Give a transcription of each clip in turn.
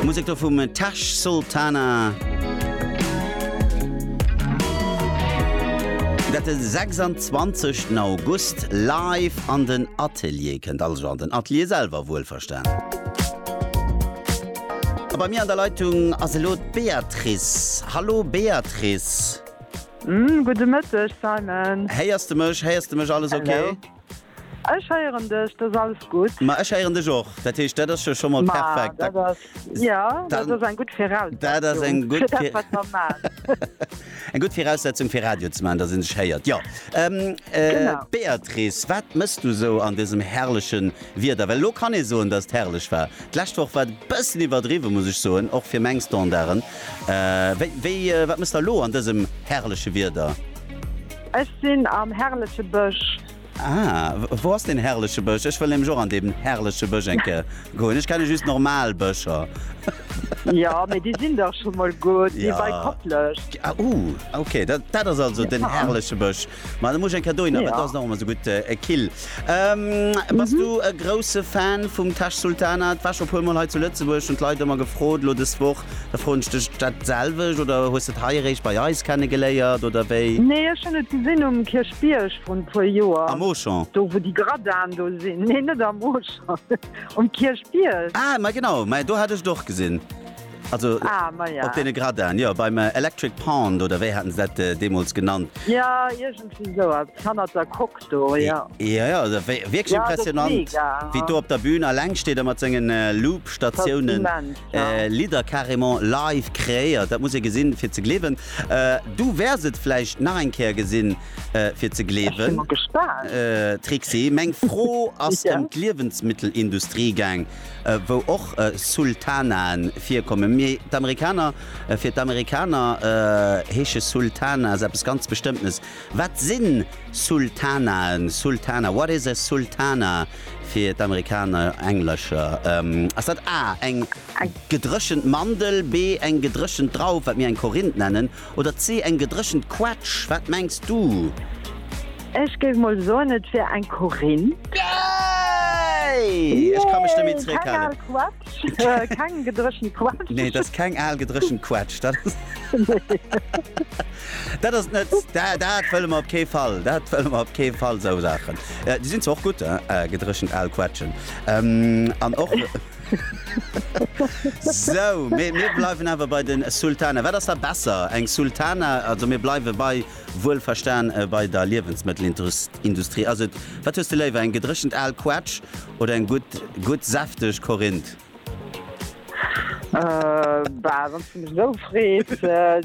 Musek do vum Tash Sultana. Dat den 26 August live an den Atelier kënnt also an den Atelier selwer wuel verstan. A bei mir an der Leitung ass elo d'Beatrice. Hallo Beatrice. Gudde Mëtteg Simon. Héiers de mech? Héiers de mech alles ok? Ech héieren dech, dat ass alles gutt. Ma ech héieren dech och, dat heescht, dat ass jo scho mol perfekt. Ma dat ass, jo, dat ass eng gutt Viraussetzung. Dat ass eng gutt Viraussetzung. Fir dat, wat mer maachen. Eng gutt Viraussetzung, fir Radio ze maachen, dass ee sech héiert. Jo. Genau. Béatrice, wat mëss du sou an dësem herrleche Wieder? Well elo kann ee soen, dass et herrlech war. D'lescht Woch war et e bëssen iwwerdriwwen, muss ech soen, och fir meng Standarden. Wéi, wéi, wat mëss der elo an dësem herrleche Wieder? Ech sinn am herrleche Bësch. Ah, wou ass deen herrleche Bësch? Ech wëll nämlech och an dee herrleche Bësch eng Kéier goen. Ech kenne just normal Bëscher. Ja, mee déi sinn dach scho mol gutt, déi bei Koplescht. Ah, uh, okay, dat, dat ass also den herrleche Bësch. Ma da muss ech eng Kéier dohinner, well dat ass nach ëmmer esou gutt kill. Bass du e grousse Fan vum Tash Sultana? Et war scho e puer mol hei zu Lëtzebuerg, hunn d'Leit ëmmer gefrot, elo dës Woch. Da froen ech dech dat selwecht, oder hues de et hei eréischt bei eis kenne geléiert, oder wéi? Nee, ech hunn et gesinn um Kierchbierg vrun e puer Joer. Am Auchan? Do wou déi Gradaen do sinn. Nee, net am Auchan, um Kierchbierg. Ah, ma genau, ma do hat ech et och gesinn. Also op deene Gradaen, jo, beim Electric Pond, oder wéi haten se dat deemools genannt? Jo, iergendwéi soueppes, hannert der Coque. do, jo. Jo, jo, also wéi, wierklech Ja, dat ass impressionant, mega, wéi ha. do op der Bühn aleng steet a mat sengen Loop-Statiounen Dat ass immens, ja. Lidder carrément live kreéiert. Dat muss ee gesinn, fir ze gleewen. Du wäers et vläicht nach eng Kéier gesinn, fir ze Ech si gleewen. mol gespaant. Trixie, meng Fro ass Ja. ëm d'Liewensmittelindustrie gaang, wou och Sultanaen virkommen, mee d'Amerikaner, fir d'Amerikaner heesche Sultanas eppes ganz Bestëmmtenes. Wat sinn Sultanaen, Sultana, what is a sultana fir d'Amerikaner, Englescher? Ass dat A, eng gedréchent Mandel, B, eng gedréchent Drauf, wat mir eng Korinth nennen, oder C, eng gedréchent Quetsch? Wat mengs du? Ech géif mol soen, et wier eng Korinth. Yay! Ech ka mech net méi zréckhalen. Äh, keng gedrëchen Quatsch. Nee, dat ass keng al gedrëchen Quatsch. Dat ass, dat ass net dat, dat wëlle mer op kee Fall. Dat wëlle mer op kee Fall sou Saachen. Äh, Di sinn och gut äh, äh, gedrëchent al Quatschen. Ähm, an och. So, mir, mir bleiwen awer bei den Sultana. Wat ass da besser? Eng Sultana, also mir bleiwe bei Wuel verstan bei der Liewensmëttelindustrie ass et, wat hues de léiwer, eng gedréchent al Quetsch oder eng gutt gutt säfteg Korinth? Bah wanns de mech esou frees,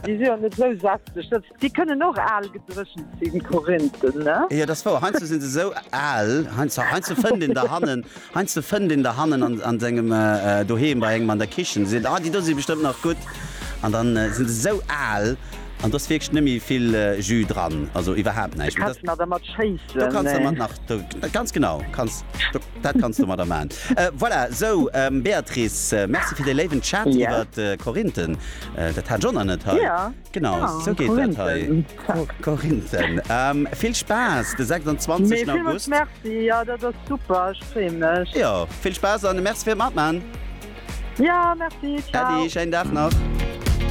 déi si jo net esou säfteg, déi kënnen och al gedréchent sinn, d'Korinthen, ne? Jo, dat ass wouer, heiansdo sinn se esou al, heiansdo fënnt een der hannen Heiansdo fënnt een der hannen a sengem Doheem bei engem an der Kichen, seet, Ah, déi do si bestëmmt nach gutt. An da si se esou al an do ass wierklech net méi vill Jus dran, also iwwerhaapt näischt. Do kanns de nach dermat schéissen. Ganz genau, dat kanns de domadder maachen. Voilà, sou, Béatrice, merci fir dee léiwen Chat iwwer d'Korinthen. Dat hat ech och nach net hei. Genau sou geet dat hei. Korinthen vill Spaass de 26 August. Jo vill Spaass an de Merc fir matman. Äddi schéin Dag nach.